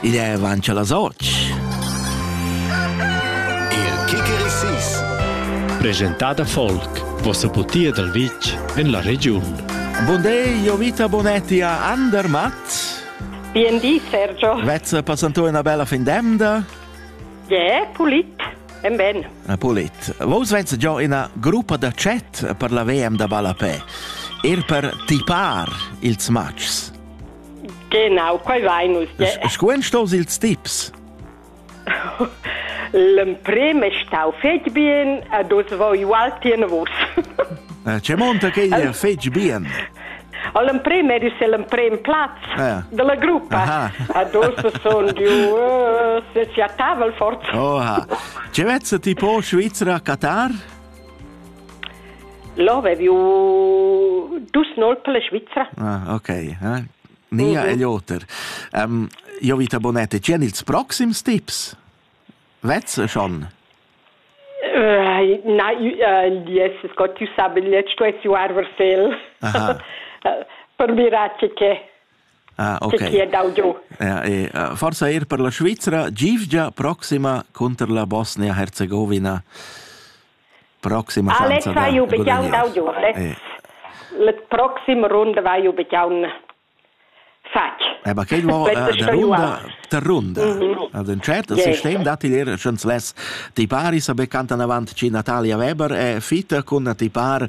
Igl è avancha las otg. Il Kikerisis. Presentada folk, vossa putia dal vitg en la regiun. Bun day, io vita Bonetti a Andermatt. Bien di, Sergio. Vezza passantò una bella fin d'emda? Yeah, pulit. En ben. Ah, pulit. Vos venza già ina gruppa da chat per la VM da ballapè. Er per tipar ils matchs. Genau, quei vai nus. Sco ein staus ils tips? L'emprim è stau fetg bien e dus voi igual tien vos. C'è monta che è fetg bien? All'emprim eri se l'emprim plaz ah. della gruppa. Adesso sono di uh, se si a tavola forza. Oha. C'è vezza tipo Svizzera Qatar? Là avevi dus nolp per la Svizra. Ah, ok. Eh? Nia mm -hmm. e Lothar, um, io vita bonete, c'è ils proxims tips? Vezze schon? Uh, na, uh, yes, Scott, tu sabi, let's tu es arversel. Aha. per mirare che Ah, ok. Chi è dau giù. Ja, e, uh, forsa er per la Svizra, gievgia proxima cunter la Bosnia-Herzegovina. Proxima Fanza da ju begiaun dau giù, le. Le proxima runda va ju begiaun fatg. Eh, ma che va der runda, der runda. Mhm. Al den chat yes. sistem dat dir schons les ti pari sa becanta avant ci Natalia Weber e fita con ti par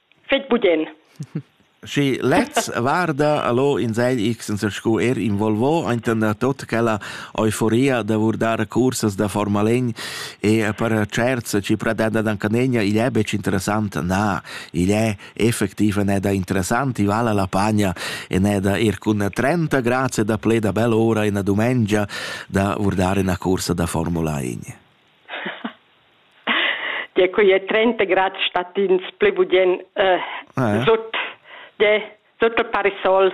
Fet budin. Schi lez varda allo in ZX sco er involvo enten da tot quella euforia da vurdar cursas da Formel 1 e per certs ci pretenda dan canegna igl è bec interessant na igl è effektiv ne da interessant i vala la pagna e ne da er cun 30 grazie da ple da bel ora in dumengia da vurdare una cursa da Formula 1 Tie quei è 30 grad statins pli budien eh, ah, ja. sut de sut el parisol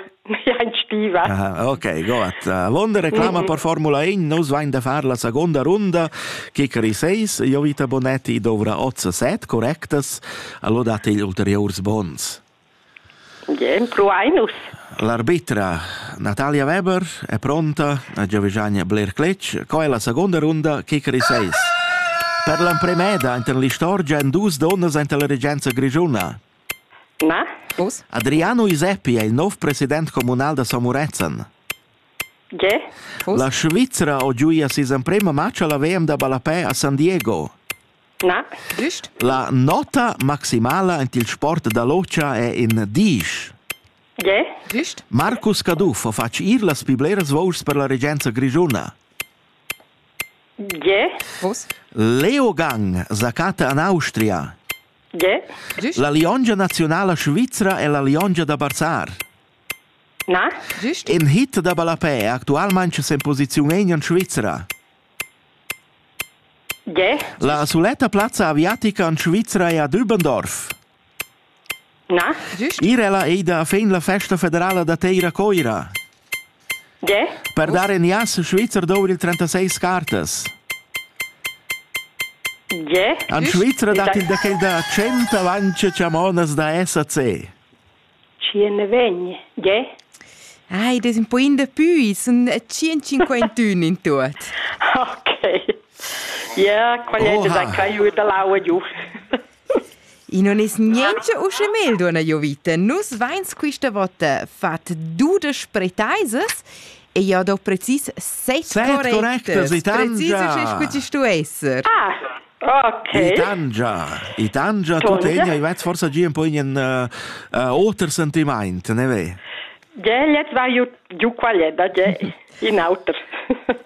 ja in stiva. Aha, okay, gut. L'onda reclama mm -hmm. per Formula 1, nus vain da far la seconda runda, Kikari 6, Jovita Bonetti dovrà 8 set correctas, allora date ulteriors bons. Gie, empruein nus. L'arbitra Natalia Weber è pronta a giovigiare bler cletg, co è la seconda runda kicker seis. Per l'empremeda enten l'istorgia en dus donnas enten la regenza grigiuna. Na? Us? Adriano Iseppi è il nov president comunal da Samurezzan. Gie? La Svizra ho giuia season prima match alla WM da Balapè a San Diego. Na. Güst? La nota maximala en il sport da lotscha è in diesch. Ge? Güst? Marcus Caduff fatg ir las pli bleras vuschs per la regenza grischuna. Ge? Vos? Leo Gang zacata en Austria. Ge? Güst? La liongia nazionala svizra è la liongia da Barzar. Na? Güst? In hit da ballapè actualmente in posizione in Svizzera. La suletta plazza aviatica en Svizra è a Dübendorf. Na? Ir ella ei da fin la festa federala da teir a Coira. Per dar in jas Svizzer dovri il 36 cartas. En Svizra dat il da quel da 100 avanti chamonas da SAC. Tschien ne vegn, gie? Ei des un poin da pü, sun tschient-cinquantun in tuot. Okay. Ja, qual è da kai u da laua giu? I non es niente usche mel, donna Jovita. Nus vains quista vota fat dudesch pretaisas e ja do precis set correctas. Set correctas, Precis usche scu ci stu esser. Ah, Okay. I tangia, i tangia tuttegna, i vets forsa gia un po in uh, uh, oter sentiment, ne ve? Ge, jetzt war ju, ju qualeda, ge, in auter.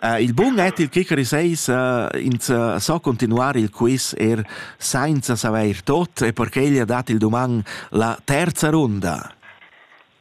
uh, il bun è il kicker seis uh, ins uh, so continuare il quiz er senza saver tot e perché gli ha dat il doman la terza runda.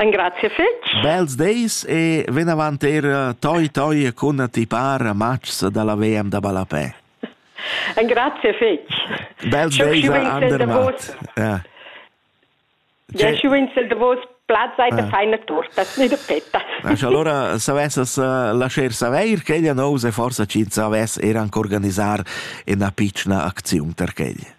Engrazia fetg. Bels deis e ven avant era toi toi cun ti para matgs dalla VM da Ballapè. Engrazia fetg. Bels deis ander mat. Ja. Ja, schu in sel davos plaz sei da feina tortas, ni da petas. Ach, allora savessas uh, lascher saveir che ella nous e forsa cin savess er anche organisar una piccola aczione per quella.